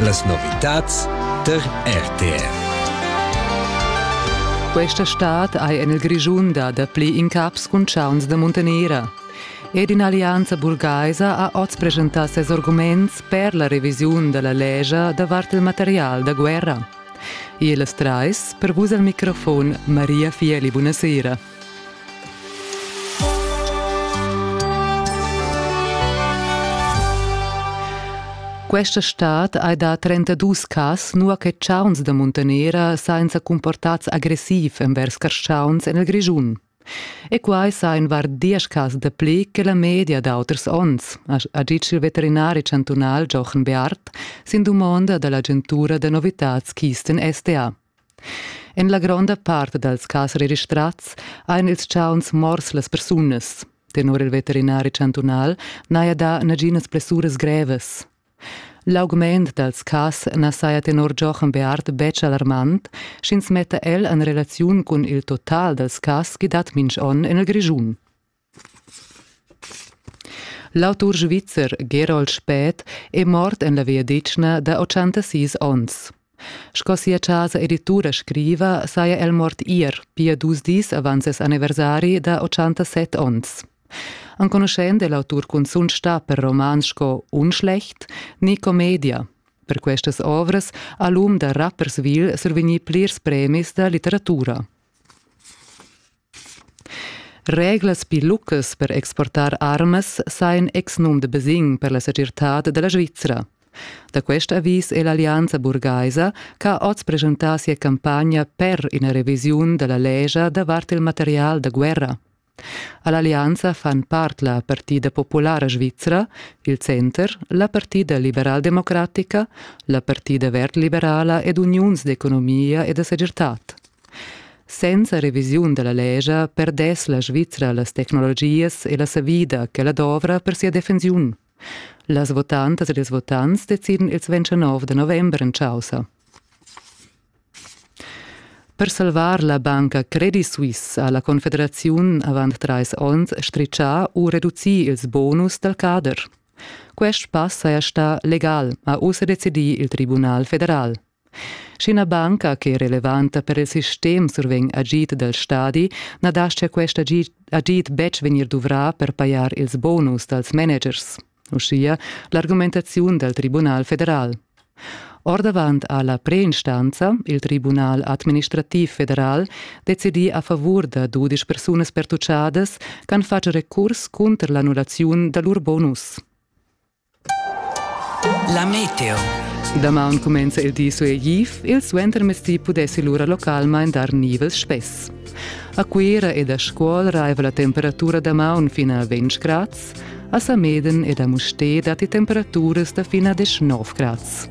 Las novitads tar RTR. Questa stad hai en il Grischun da dapli incaps cun chauns da muntanera. Ed in allianza burgaisa ha oz presentà ses arguments per la revisiun da la legia davart il material da guerra. E las trais, per vus al microfon Maria Fieli, buonasera. Questa stad hai dà 32 cas, nua che chauns da muntanera sainza comportats agressiv envers carschauns en il Grischun. E quai sa in var diesch cas dapli che la media d'auters onns, ha ditg il veterinari chantunal Jochen Beart sin dumonda dall'agentura da novitads Kisten SDA. En la gronda part dals cas registrads ein ils chauns mors las persunas. Tenor il veterinari chantunal n'haja dà naginas blessuras grevas. L'augment dals cas na saja tenor Jochen Beart betg alarmant, sch'ins metta el en relaziun cun il total dals cas ch'i dat minch'onn en il Grischun. L'autur svizzer Gerold Spät è mort en la vegliadetgna da ottantasis onns. Sco sia chasa editura scriva, saja el mort ier, pia dus dis avant ses anniversari da 87 onns. Enconuschend è l'autur cunzunt stà per romans sco Unschlecht ni Commedia. Per questas ovras ha l'um da Rapperswil survegnì plirs premis da litteratura. Reglas pli lucas per exportar armas sa in exnum da basegn per la segirtad dalla Svizra. Da quest avis è l'allianza burgaisa ch'ha oz presentà sia campagna per ina revisiun da la lescha davart il material da guerra. All'allianza fan part la Partida Populara Svizra, il Center, la Partida liberaldemocratica, la Partida verd liberala ed Uniuns d'economia e da segirtad. Senza revisiun dalla lescha perdess la Svizra las tecnologias e la savida ch'ella dovra per sia defensiun. Las votantas ed ils votants decidan ils 29 da november en chaussa. Per salvar la banca Credit Suisse ha la Confederaziun avant trais onns stritgà u reducì ils bonus dal cader. Quest pass saja stà legal, ha ussa decidì il Tribunal federal. Sch'ina banca che è relevanta per il sistem survegn agid dal stadi, na dastia quest agid, agid betg vegnir duvrà per pajar ils bonus dals managers, uschia l'argumentaziun dal Tribunal federal. Ordavant ha la preinstanza, il Tribunal administrativ federal, decidì a favur da dudisch persunas pertucciadas ch'han fatg recurs cunter l'annullaziun da lur bonus. La meteo. Damaun cumenza il di suegliv, il suentermezdi pudessi lura localmain dar nivels spess. A Cuira ed a Scuol raiva la temperatura damaun fin a 20 grads, a Sameden ed a Mustér datti temperaturas da fin a 19 grads.